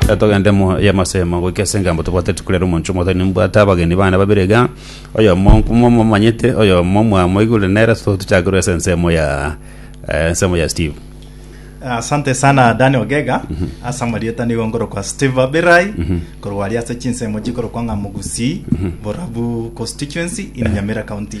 Reka togende mo y'amasemo goika ase engambo tobwate rituko riaria omoncho omoto nimbwate abageni bane babere iga oyomo nkomo momanyete oyomo mwamoigure nere so tochake rwa ase ensemo ya eh, ensemo ya steve asante sana dani ogega ase amarieta nigo nkorokwa steve abirai korwaria ase chinsemo chikorokwa ng'a mogusi borabu constituency in nyamira county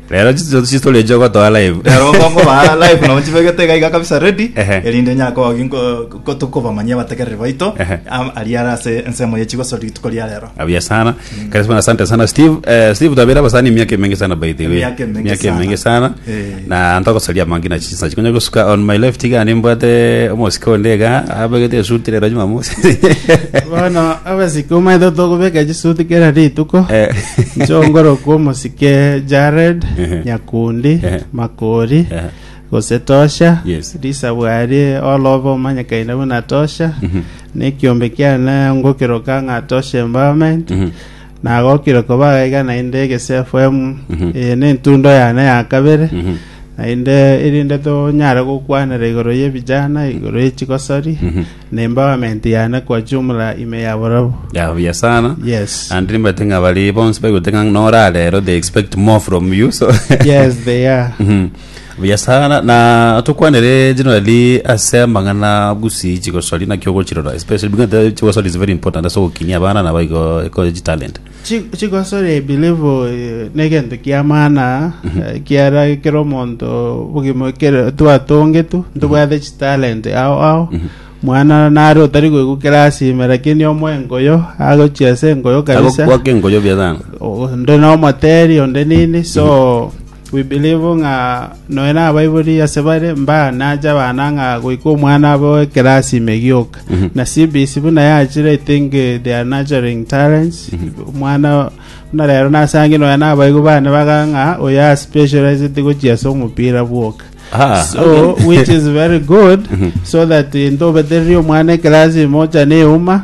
rero chiso- chistori echi ogotoa live Rero okongo ba live nabo chibegete iga iga kabisa ready Ehe. erinde nyakogi tokobamanyia abategereri baito Ehe. am- aria ara ase ensemo ye chigosori rituko ria rero Abia sana. Karibu sana, asante sana Steve. Eh, Steve tabera basani miaka mingi sana by the way. Miaka mingi Miaka sana. mingi sana. Eh. Na ntakosalia mangi na Nachi konya gosuka on my left iga ande mbwate omosike onde iga abegete esuti rero Jumamosi. Bono abasike omanyete tokobeka chisuti kera rituko Eh. nchongorokwa omosike Jared Ehe. Nyakundi Ehe. Makori Ehe. gose Tosha Yes. Lisa Bwari olobe omanyekaine buna Tosha Mhm. nekiombe kiane ngokeroka ng'a Tosha Empowerment Mhm. Nagokire koba gaiga naende egesefm eye nentundo yane ya kabere naende erinde tonyare gokwanera igoro yebijana igoro ye chigosori na empowerment yane kwa jumla ime ya borobwo ya buya sana Yes. and nimbate ng'a bari bonsi baigoteka ng'a norarero they expect more from you so yes they are Mhm. Buya sana na tukwanere generally ase amang'ana busi chigosori naki ogochirora especially because the chigosori is very important ase ogokinia abana nabo igo eko chitalent Chi- chigosori i believe eh, negento kia maana eh, kiara kero omonto bogima kero twatongetu ntobwate chitalent ao ao mwana nare otari goigwa kerasi ime lakini omoe engoyo agochia ase engoyo kabisa agokwaka engoyo buya sana O- onde nomoteri onde nini so We believe ng'a nonya nabaibori ase bare mbanache abana ng'a goika omwana abe owe class ime gioka na CBC buna yachire I think eh, they are nurturing talents omwana buna rero nasange nonya nabaigwa bane baga ng'a oyo are specialized gochia ase omopira bwoka Ah, so okay. which is very good so that into obetererie omwana ekelasi ime ochane euma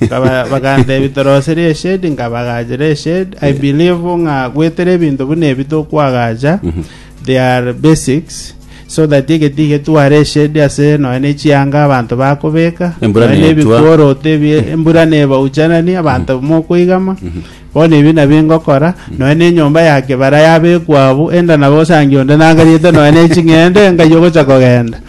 Nkaba- bakantebi torosire eshedi nkabagachera eshedi i believe ng'a gwetera ebinto buna ebi tokwagacha they are basics so that egeti getware eshedi ase nonya ne chianga abanto bakobeka Embura nonya ne netwa. ebikoroto ebi embura nebauchanani abanto mokoigama bono ebi nabio ngokora nonya ne enyomba ya kebara yabekwa abwo enda nabo osange onde nangariete nonya ne ching'ende ngai ogocha kogenda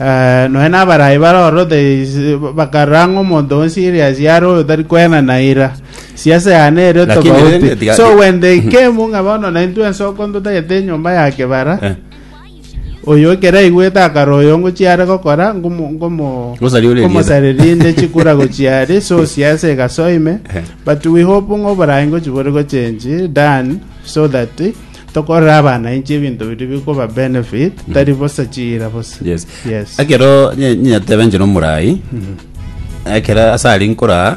Eh, nonya nabarayi bare orothe bakarora ng'a omonto o serious yare oyo tari kwena na ira siasa yane ere Lakini rende tofauti tiga- so when they came ng'a bono na intwe ensoko ntotagete enyomba ya kebara Eh. oyo ekero aigwete akara oyo ngochiare gokora ngomo- ngomo- Gosari ore ngomosareri inde chikura gochiare so siasa egasoime Eh. but we hope ng'a oborayi ngochibore gochenji dan so that Tokorera abana inche ebinto biria bikoba benefit, tari bosa chiira bosa. Yes. Yes. Ekero nye- nyateba inche nomorai ekero ase aria nkoraa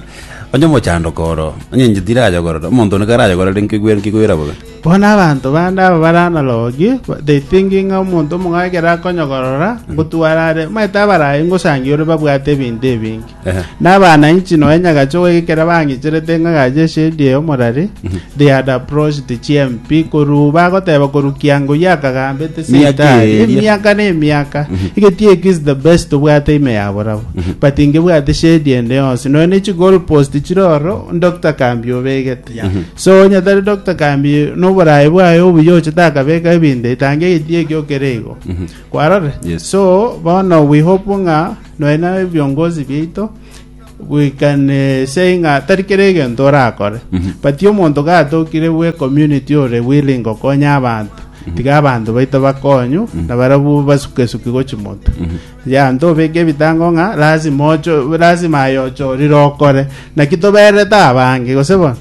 onye omochandoko oro onye inche tirayogorora omonto one karayogorere nkigwe- nkigwera bobe Bono abanto bande aba bare analog, ba- they thinking ng'a omonto omong'ao ekero akonyokorora, ngotwara are, omanyete abarai ngosangia ore babwate ebinto ebinge. Na abananchi nonya nyagacha ogwegekera bang'icherete ng'a gacha eshedi eye omorari. They had approached the GMP korwa bagoteba korwa kiango ya kagambete Miaka seitani. eria. Emiaka na emiaka. Egeti eki is the best obwate ime ya borabo. But ingebwate shedi ende yonsi. Nonya ne chigol post chire oro Dr. Kambi obegete. So onye tari Dr. Kambi noborae bwaye obuya ochete akabeka ebinto etange egeti eki okere igo. Kwarore? Yes. So bono we hope ng'a Nonya nebiongozi biaito bwekanesie ng'a tari kera egento orakore but omonto gatokire bwe community ore willing gokonya abanto tiga abanto baito bakonywe na barabwo basukesuki gochi moto ya ntobeke ebitango ng'a lazima ocho lazima aye ochorire okore Naki tobererete abange, gose bono?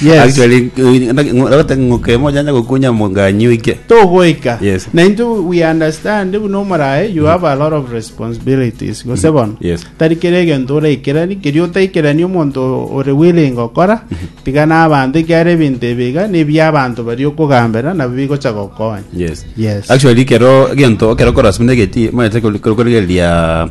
Yes. Actually, eh, nda- ng'o- ndagotaka ng'oke mojanja gokunya monganyi oike. togoika Yes. na into we understand buna omorae you have a lot of responsibilities gose bono Yes. tari kera egento oraikerani kerio otaikerani omonto o- ore willing okora tiga na abanto ekiara ebinto ebiga nebia abanto bari okogambera nabo bigocha gokonya Yes. Yes. Actually, kero gento kero kora sumne geti, mwana teko koro koro gelia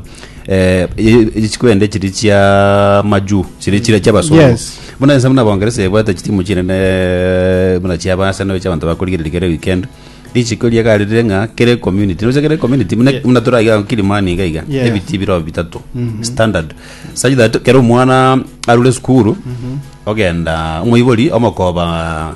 eh, ye- ye- chikwende chiri chia majuu chiri chire chiabasungu Yes. buna ense buna bongeresa ebwate chitimu chinene buna chiabasa nayo chiabanto bakorigereri kere weekend richiko riaga rire ng'a kere community nocha kere community buna Yeah. buna toraiga kilimani iga iga Yeah. ebiti biro bitatu standard such that kere omwana arure sukuru ogenda omoibori omokoba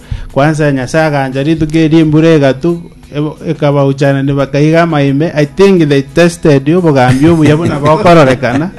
Kwansa Nyasae agancha rituko erio embura egatu ebo- ekabauchanania bakaiga amaime. I think they tested obogambi obuya buna bokororekana.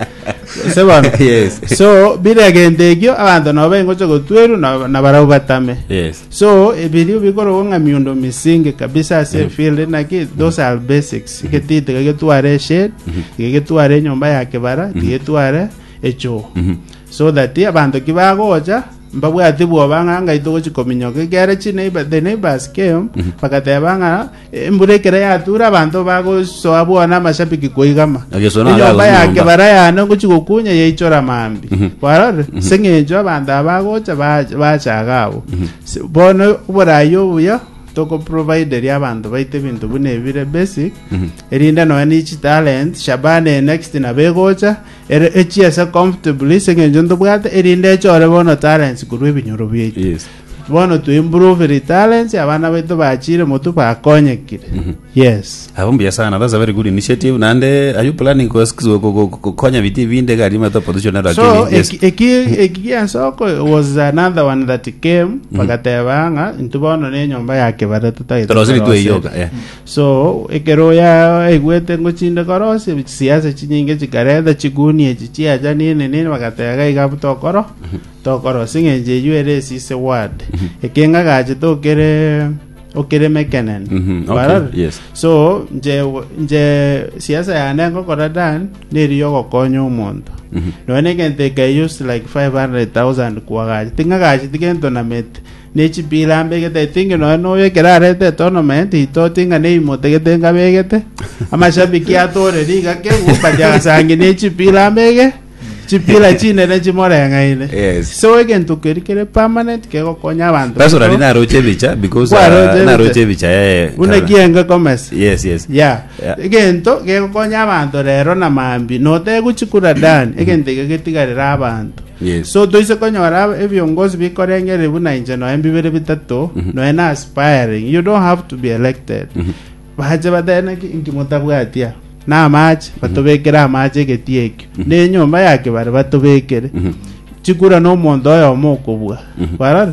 Gose bono. Yes. So bire egento ekio abanto nabo baingocha gotwerwa na- na barabwo batame. Yes. So ebirio bikorogwa ng'a miundo misinge kabisa ase Yeah. field naki those are basics. Egeti tiga getware eshade, tiga getware enyomba ya kibara, tiga etware echoo. Mhm. So that abanto ki bagocha Mbabwate bwoba ng'a ngai togochia kominyoka ekiagera chineighbor the neighbors came bagateba ng'a embura ekero yatura abanto bagosoa bwona amashabiki koigama Agesoa naro enyomba agosoa yake nyomba. bara yane ngochia gokunya yaichora mambi kwarore seng'encho abanto aba bagocha ba- bachaga abo Se- bono oborai obuya tokoprovideria abanto baito ebinto buna ebire basic erinde nonya ne chitalent shabana eye next nabo egocha Ere echiese comfortably ase eng'encho ntobwate, erinde echore bono talents korwa ebinyoro biaito. Yes. Bono to improve the talents, abana baito bachire motwe bakonyekire. Yes. Abo mbuya sana, that's a very good initiative. Naende, are you planning kos- kos- ko- ko- ko- konya biti binde gari mato opposition ero So, akini? Yes. eki- eki- eki giasoko was another one that came, bagateba ng'a, intwe bono ne enyomba ya kebare totagete Torosiri koroseri. tweiyoka, yeah. So, ekero oyaigwete ngochinde korosia, chisiasi chinyinge chikarenta chigunia echi chiachani enene, bagateba, Gaiga abwo tokoro tokorosia, eng'encho eyio ere esise word. Ekenga gachete okere okere mekenene. Mhm, okay, Barora? yes. So, nche nche siasa yane ngokora Dan, neri yogokonya omonto. Mhm. Nonya egento ekeyusi like 500,000 kwagachete, ng'agachete gento namete. Ne chipiila mbegete etingi nonya noyo ekero arete etournament itoti ng'a ne imotegete enga begete amashabiki atore riga kegwo but agasangi ne chipiila mbege chipiila chinene chimoreng'aine Yes. so egento keri kere permanent kegokonya abanto Sasa baito. nari naroche ebicha because Kwa roche uh, ebicha. naroche ebicha eh, buna Caroline. kienge komesi Yes, yes. ya Yeah. egento gegokonya abanto rero na mambi noteguchikura dan egento ege getigarera abanto Yes. so toise konyora ab- ebiongozi bikorengereria buna inche noe mbibere bitato noe na aspiring you don't have to be elected bache bateneki inki motabwatia na amache batobekere amache egeti ekio na enyomba ya kebare batobekere chikura na omonto oyomo okobua barore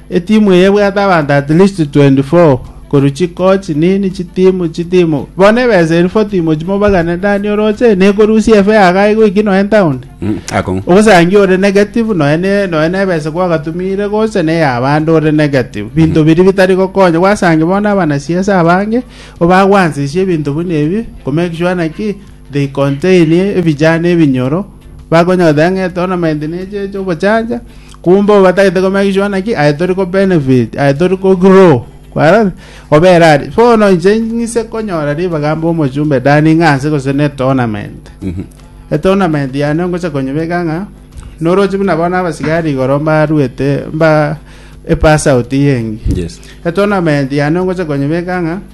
Etimu eye ebwate abanto at least 24, korwa chicoach, nini, chitimu, chitimu. Bono ebesa eria 40 imochi mobagane Dani oroche, nekorusia efe iga igo inki nonya town? Mm, akong'u. Ogosangia ore negative nonya ne nonya nebesa gwagatumire gocha ne ya abande ore negative. Binto biri bitari gokonya gwasangi bono abana siasa abange obagwansisie ebinto buna ebi ko make sure naki They contain ebijana ebinyoro, bakonyora taiga ng'a eto na maintenance eche ogochacha, kumbe obo batagete komake sure naki aye tori ko benefit, aye tori ko grow, kwarora? Obera are. Bono inche ng'ise konyora ribaga mbe omochumbe than ng'a ase gose ne tournament. Etournament yane ngocha konyebeka ng'a, noroche buna bono abasigari igoro mbaruete mba epass out eye engiya. Yes. Etournament yane ngocha konyebeka ng'a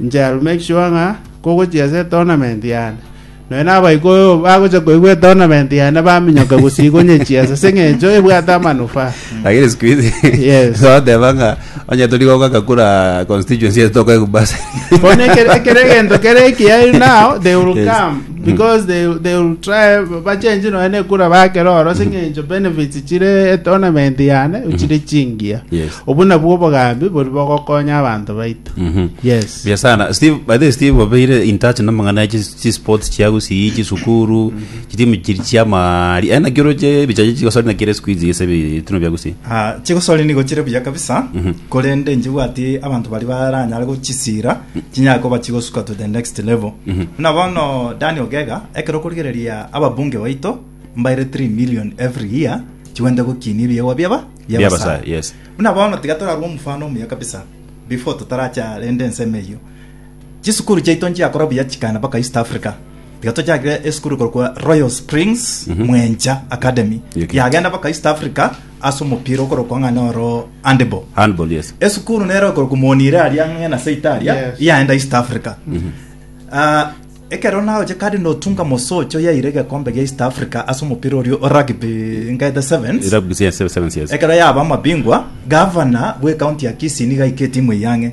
Inche I will make sure ng'a kogochia ase etournament yane, nonya na abaikoro bagocha koigwa etournament yane baminyoka gose igonyechia ase ase eng'encho ebwate amanufaa. lakini siku hizi Yes. toteba ng'a onye turi goka kakura constituency yetu tokaigwa basi Bono ekere ekere egento kere ekiya now they will Yes. come. Because they, they will try bachenji nonya nekura bakera oro sing'encho benefits chire etournament yane chire chingiya Yes. obu nabwo obogambi bori bogokonya abanto baito Mhm. yes Bia sana steve by the way, steve obeire in touch namang'ana ya chi- chi sports chiagusii chisukuru chitimu chiri chiamari eh, ena kiro che bichache chigosori na kire squeeze yese bitino biagusii Ah, chigosori nigo chire buya kabisa korende njibwati abanto bari baranyare gochisira Chinyare koba chigosuka to the next level. Buna bono Dani Ogega, ekero okorigereria ababunge baito mbaire 3 million every year chigwente gokinia ebiegwa biaba Bia bia Abasae, Abasae. yes. Buna bono tiga torarue omofano omuya kabisa before totaracha rende ensemo eyio. Chisukuru chiaito nchiakora buya chikaenda mpaka East Africa. Tiga tochakire esukuru ekorokwa Royal Springs Mwencha Academy. Yagenda mpaka East Africa ase omopira okorokwa ng'a noro handball handball yes esukuru nere okorokwa monire aria ng'e na seita aria Yes. yaenda east africa Ah, ekero naoche kandi notunga mosocho yaire egekombe gia east africa ase omopira orio o rugby ngaete sevens irabu yes seven seven yes ekero yaba amabingwa gavana bw'ekaunti ya kisii niga aika etimu eyang'e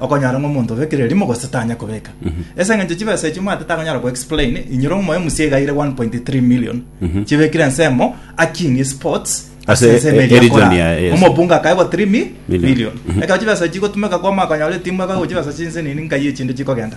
Okonyora ng'a omonto obekire erimo gose tanya kobeka. Ase eng'encho chibesa echio mwate takonyara ko-explain, inyora omoyo musie igaire 1.3 million chibekire ensemo akinie sports Ase ase ensemo e- eria region akora. ya- yes. Omobunge akaegwa 3 mi- Million. million. Ekero chibesa echi chigotumeka kwama akonyora etimu ebe gochibesa chinse nini nkai echinde chikogenda.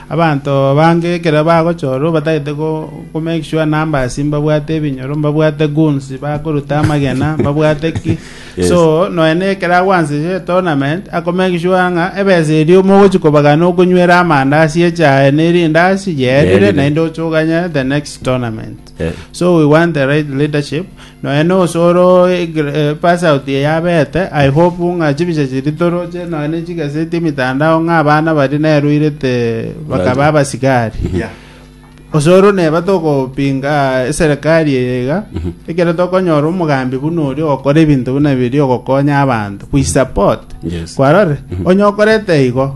Abanto bange ekero bagochorwa batagete komake sure numbers mbabwate ebinyoro, mbabwate goons bakoruta amagena, mbabwate ki. Yes. So nonya na ekero agwanseria etournament akomake sure ng'a ebesa eria mogochi kobagana okonywera amandazi echae ne rindazi yerire Yerire. naende ochoganye the next tournament. Eh. so we want the right leadership noe nosoro pass out ye yabete i hope ng'a chibicha chiri toroche noe ne chigaseti emitandao ng'a abana bari neruirete bakaba abasigari Yeah. osoro neba togopinga eserikari eye iga ekero tokonyora omogambi buna oria ogokora ebinto buna biria ogokonya abanto we support Yes. kwarore onye okorete igo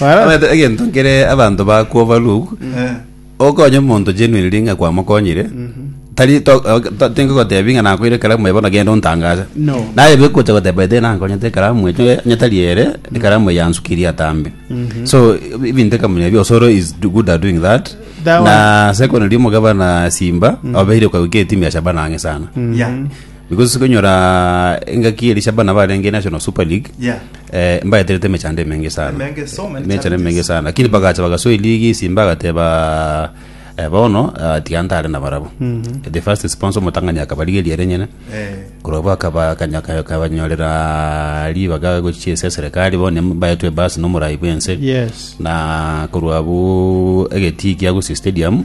Omanyete egento nkere abanto bakwo barugu okonye omonto genuinely ng'a kwamokonyire tari to- ok- to- tingogotebi ng'a nakoire ekaramu eye bono genda ontangase No. naye begocha goteba ete nankonyete ekaramu eye onye- onye tari ere ekaramu eye yansukirie atambe so ebi- ebinto ekamonya ebi osoro is do- good at doing that That na secondly omogabana simba obeire okagwika etimu ya shabana ang'e sana Yeah. because sikonyora engaki eri cia abana barenge national super league Yeah. eh, mbaeterete emechando emenge sana Emenge, so many emechando challenges. emenge sana lakini bagacha bagasoa eligi simba agateba eh, bono ah, tiga ntare na barabo the first sponsor motang'ani akabarigeria ere nyene Eh, korobwa akaba- akanya- akabanyorera ribaga gochia ase serikali bono baetwe ebasi nomorai bwense yes na korwa bu egetiki agusi stadium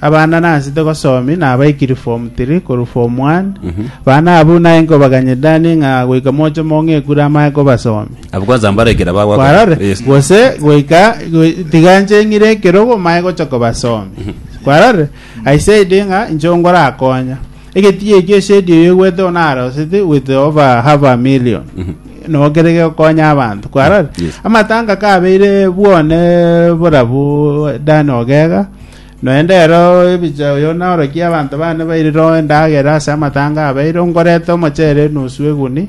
Abana nansete gosomi nabaikiri form tiri korwa form one, abana aba buna aye nkobaganyereranie ng'a goika moche mong'ekure amaya kobasomi. Abwo kwanza mbarekera bagwa. Kwarore, Yes. gose goika goi- tiga nche ng'ire ekerogo manye gocha kobasomi. Kwarore, I said ng'a inche ongorakonya. Egetigei ekio esedi eyo egwete one arosete with over half a million no kere gekonya abanto kwarore Yes. amatanga kabeire bwone borabu dani ogega noende ero ebicha oyo norokia abanto bane bairire endagera ase amatanga abeire nkorete omochere enusu eguni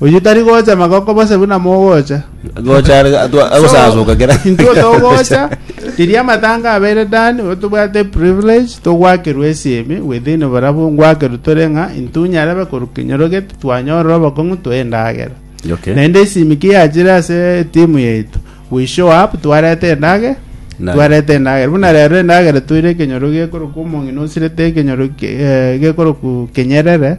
Oyio tari gocha magoko bose buna mogocha. Gocha are atwa- agosasuka kera. Intwe togocha, riria amatanga abeire Dani, oyo tobwate privilege togwakerwa esimi within barabwo ngwakerwa tore ng'a intwe onye arabe korwa kinyorogete twanyorora obokong'u twa endagera. Okay. Naende esimi ki yachire ase etimu yaito We show up twareta endagera Naye. twareta endagera buna rero endagera toire ekenyoro gekorokwa omong'ina osirete ekenyoro ke- eh, gekorokwa kenyerere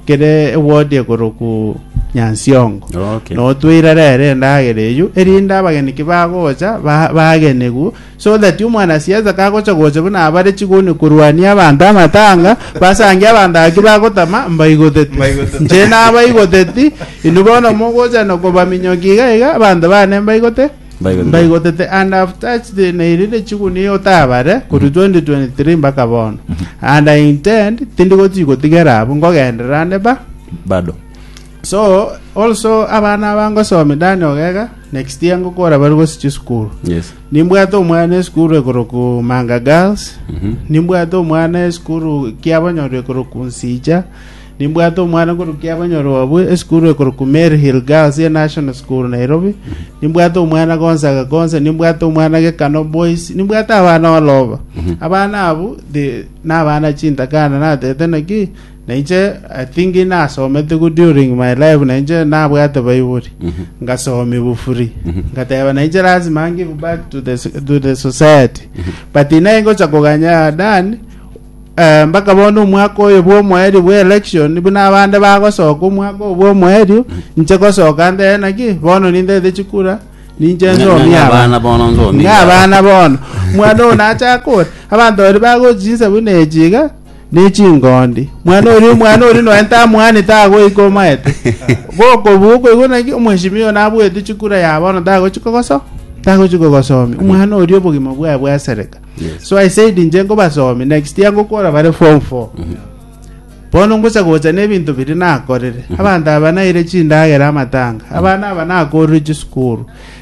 kere ewodi ekorokwa nyansiongo Okay. notwaire rero endagera eyio erinde abageni ki bagocha ba- bagenigwe so that omwanasiasa kagocha gocha buna abare chigoni korwania abanto amatanga, basangie abanto aba ki bagotama mbaigoteti. Mbaigoteti. Inche nabaigoteti, inwe bono mogocha na kobaminyokia iga iga, abanto bane mbaigote, Mbaigoteti. mbaigotete and have touched the- nairire chiguni iga otabare korwa 2023 mpaka bono. And I intend tindi gochi gotigera abwo, ngogenderera ande ba, Bado. So also abana aba ngosomia Dani Ogega next year ngokora bari gosi chisukuru Yes. nimbwate omwana esukuru ekoroku Manga Girls Mhm. nimbwate omwana esukuru kiabanyoro ekoroku Nsija nimbwate omwana ekoroku kiabanyoro wabwe esukuru ekoroku Mary Hill Girls ye National School Nairobi nimbwate omwana Gonzaga Gonza nimbwate omwana Gekano Boys nimbwate abana oloba abana abu the- nabana chintakana natete naki Na inche I think nasomete good during my life na inche nabwate baiburi ngasomia bufuri ngateba na inche lazima I give back to the, so- to the society but naye ngocha koganya Dan eh, mpaka bono omwaka oyo bwa omoerio bwa election buna abande bagosoka omwaka oyo bwa omoerio inche gosoka ndere naki bono nindete chikura ninche Ng'a- ng'a- nsomia abana bono nsomia. ng'a abana bono mwana oyo nachaka ore abanto baria bagochi chinsa buna echi iga ne chingondi. Mwana oria omwana oria noe tamwanete agoika omaete. Gokobua okoigwa naki omweshimiwa oyo nabuete chikura ya bono tagochi kogoso tagochi kogosomia. Omwana oria obogima bwaye bwasereka. So I said inche nkobasomia next year ngokora bare form 4. Bono ngosa gocha ne ebinto biri nakorire. Abanto aba naire chindagera amatanga. Abana aba nakorire chisukuru.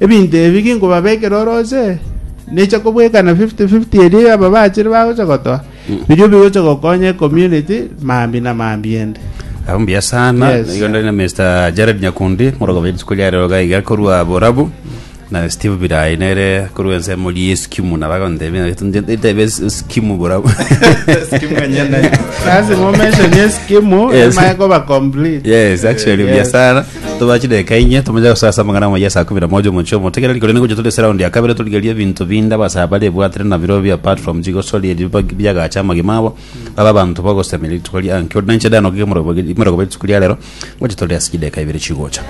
Ebinto ebi ginkobabekera orooche, neche kobwekana fifty fifty erio y'aba bachire bagocha gotoa, birio bigocha gokonya ecommunity mambia na mambia ende. Abwo mbuya sana Yes. nigo ndari na Mr. Jared Nyakundi moroka bwa rituko ria rero iga iga korwa Borabu na Steve Birai nere korwa ensemo ri Eskimu na bagontebia ntebe Eskimu Borabu Lazima omention eskimu Yes. emaye koba complete. Yes, actually, Eh, mbuya yes. sana Tobache deka inye tomonya gosa ase amang'ana amaya saa kumi na moja omochie omotegereri korende ngocha tore ase round ya kabere torigerie ebinto binde abasaa bare ebwatire nabiro bi apart from chigosori erio bag- biagacha amagima abo babe abanto bagosemia rituko riange ore nainche danoke imoregoba rituko ria rero ngocha tore ase chideka ibere chigocha